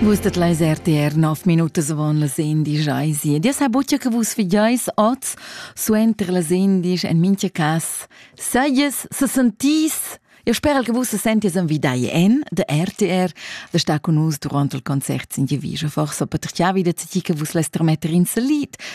Vus dat leis RTR 9 minutas avon las 11 eis. Dia sa buca che vus figeis oz suenter las 11 en mincha cas sajas se sentis Eu spero che vus se sentis en vidai en de RTR, de sta con nus durante il concert sin Jevijo. Forse potrà wieder ti che vus lässt trametter in lied,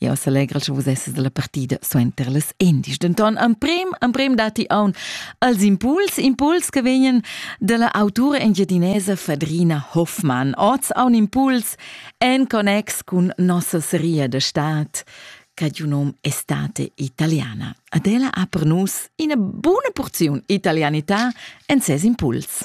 Jau selegral sche vus esses dalla partida suenter las Endis. Denton emprim, emprim datti aun als impuls, impuls che vegnan dalla autura engiadinesa Fadrina Hoffmann. Oz aun impuls en connex cun nossa seria de stat Cadiunom estate italiana. Adela ha per nus ina buna porziun italianità en ses impuls.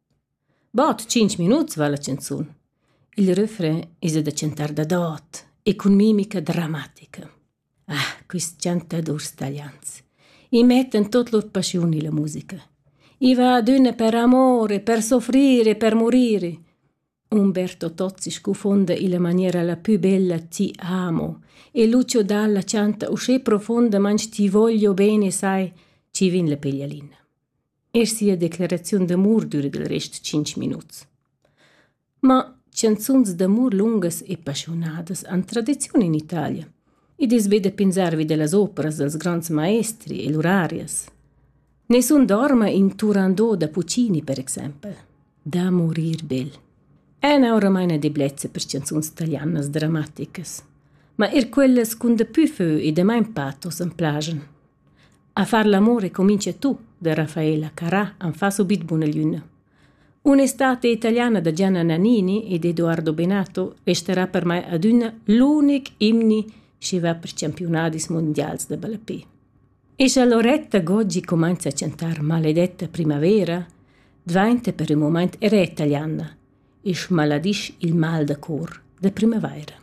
Bod tschinch minuts va la chanzun. Il refrain esa da chantar dadot e cun mimica dramatica. Ah, quist chantadurs talians. I mettan tot lur paschiun illa musica. I va adüna per amore, per soffrire, per morire. Umberto Tozzi scufonda illa maniera la pü bella Ti amo e Lucio Dalla chanta uschè profondamant Ti voglio bene sai, ci vin la peglialina. e sia declaraziun d'amur düra dal rest tschinch minuts. Ma chanzuns d'amur lungas e paschiunadas han tradiziun in Italia. Id es be da pensar vi da las operas dals grands maestri e lur arias. Nessun dorma in Turandot da Puccini, per exempel. Da morir bel. Ena oramain a deblezza per chanzuns italianas drammaticas. Ma er quellas cun da püfeu e damain patos am plajan. A far l'amur e cuminza tu, da Raffaella Carrà am fa subit buna lüna. Un'estate italiana da Gianna Nannini ed Edoardo Benato resterà per mai adüna l'unic imni chi va per champiunadis mundials da ballapè. E scha Loretta Goggi cumainza a chantar Maledetta primavera, dvainta per ün mumaint era italiana e schmaladisch il mal da cor da primavaira.